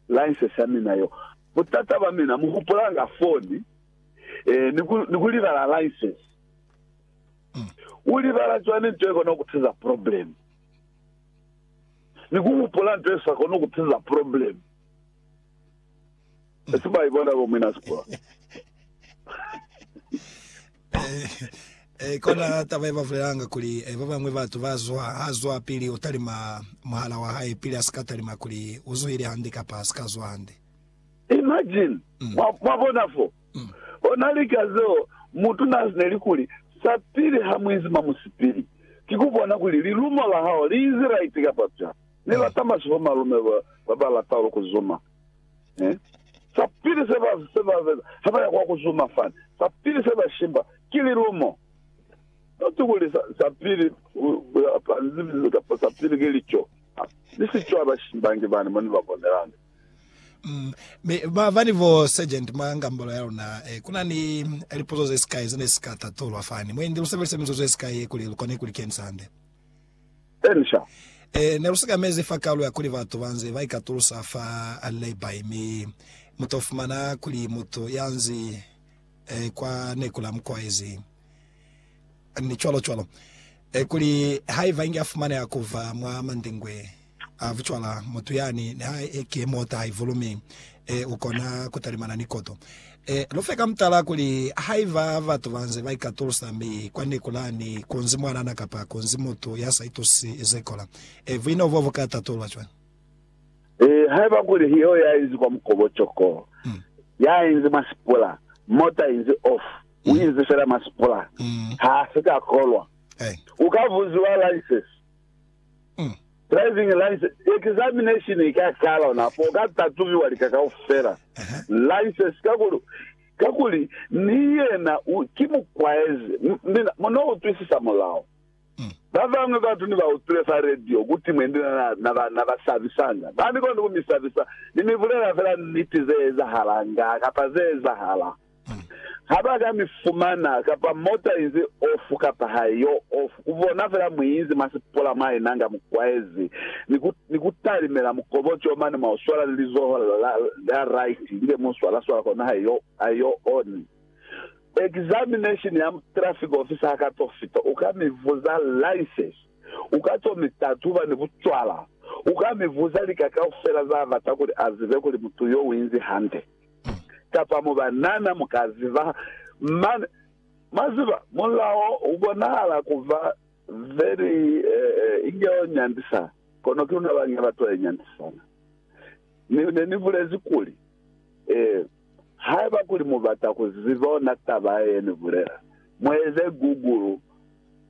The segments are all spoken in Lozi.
license ya mina yo. Butata bwa mina mu hupulanga foni eh, ni ku, ni ku libala license. U libala cwani nto ye kona ku tiza problem? Ni ku hupula nto ye sa koni ku tiza problem. Esi ba ibona bo mina sikula. Eh, eh, kona taba ye bavulelanga kuli eh, ba bangwe batu bazwa hazwa pili utalima muhala wa hae pili asika talima kuli uzuhile hande kapa asika zwa hande. Imagine mm. mwabona fo mm. ona lika zeo mutu nazineli kuli sapili ha muizima musipili kikubona kuli lilumo la hao liizi right kapa pya ni mm. lata masiho malume ba balata ulu kuzuma Eh? Sa pili se ba se ba beza ha ba ya kwa ku zuma fani, sa pili se ba shimba ki lilumo. Noti kuli sa, sa pili pa nzimizi kapa sa pili ki lico. Ah, ni si cwa ba shimbangi bani mo ni ba bonelangi. Mm. Mi ba ba ni bo sergeant mwa ngambolo ya luna eh, kuna ni lipuzo ze sikai ze ne si ka tatulwa fani. Mwendi lu sebelise mizuzu ye sikai kuli lu kone ku li kensande. Elisha. E, ne lu sikamezi fa kalu ya kuli batu ba nze ba ikatulusa fa Lehi, mi mu to fumana kuli mutu ya nzi e, kwa neku la mukwaezi, ni cwalo cwalo, e, kuli haiba inge a fumaneha ku ba mwa mandingwe. A vucwala mutu yani ni ha e ki mota haivulu mi e u kona ku talimana ni koto. E lu fe ka mutala kuli haiba batu ba nze ba ikatulusa mi kwa neku lani kunzi mwanana kapa kunzi mutu ya sa itusisi ze kola, e buino bo bu ka tatulwa cwañi? E haiba kuli ki yo ya inzi kwa mukobo coko, ya inzi mwa sipula, mota inzi off, u inzi fela mwa sipula, ha si ka kolwa. U ka buziwa license, Umm. Driving license examination i ka kala ona fo ka tatubiwa lika kaufela license kakuli kakuli ni yena u ki mukwaezi mina mu no utwisisa mulao mm. ba bangwe batu ni ba utwile fa radio kuti mwendi na na, na, ba, na ba sabisanga ba ni koni ku mi sabisa ni mi bulela fela niti ze ezahala nga kapa ze ezahala Ha ba ka mi fumana, kapa mota inzi ofu kapa ha i yo ofu, ku bona fela mwi inzi mwa sipola mwa ina nga mu kwaezi, ni ku, ni ku talimela mukobocoo mane mwa u swala ni lizoho la, la, la right, ni be mu swala swala kono ha i yo, ha i yo oni. Examination ya traffic officer ha ka to fita, u ka mi vuza license, u ka to mi tatuba ni bucwala, u ka mi vuza lika kaufela za bata kuli a zibe kuli mutu yo u inzi hande. kapa mubanana mu ka ziba. Mane, mwa ziba, mulao u bonahala ku ba very, eh, inge o nyandisa, kono ki luna ba nge ba tole nyandisana. Ni, ne ni bulezi kuli, eh, haiba kuli mu bata ku ziba ona taba ye ni bulela, mu eze Google.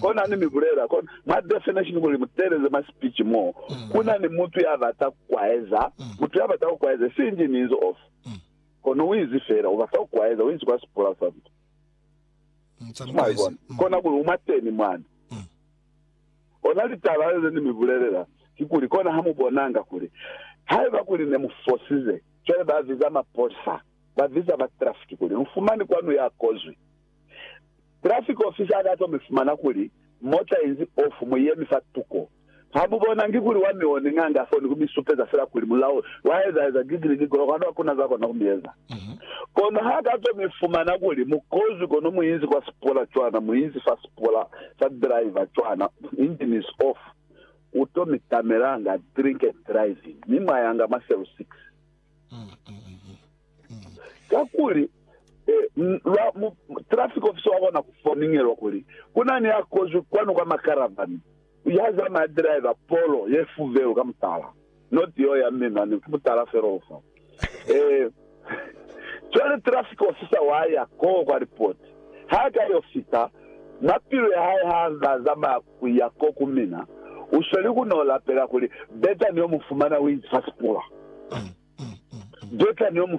Kona ni mi bulela kona mwa definition kuli mu teeleze mwa speech mo ku na ni mutu ya bata ku kwaeza. Mutu ya bata ku kwaeza si inzi ni inzi off. Kono u inzi fela u bata ku kwaeza, u inzi kwa sipula sa mtu. Mwa ibona? Kona kuli u mwateni mwani. Ona litaba le ni mi bulelela kikuli kona ha mu bonanga kuli haiba kuli ne mu fosize, cwale ba viza mapolisa, ba viza ba traffic kuli lu fumani kwa nu ya kozwi. Traffic officer ka to mi fumana kuli mota inzi off, mu yemi fa tuko. Ha mu bonangi kuli wa mi one nga nga foni ku mi supeza fela kuli mulao wa eza eza gigili gigolo kwanu ha kuna za kona ku mi eza. Kono ha ka to mi fumana kuli mu kozwi kono mu inzi kwa sipola cwana mu inzi fa sipola sa driver cwana engine is off, u to mi tamela nga drink and driving mi mwa yanga mwa cell 6. Kakuli, lwa mu, traffic officer wa kona ku foningelwa kuli, ku na ni ya kozwi kwanu kwa makaravani, ya zamaya driver polo ye fuvelu ka mutala, not yeo ya mme mane, ki mutala fela o fa. Eh, cwale traffic officer wa ya koo kwa report. Ha ka yo fita, mapilu ya hae ha za zamaya ku ya ko ku mina, u sweli ku no lapela kuli, Beta ni yo mu fumana, u inzi fa sipula. Beta ni yo mu fumana.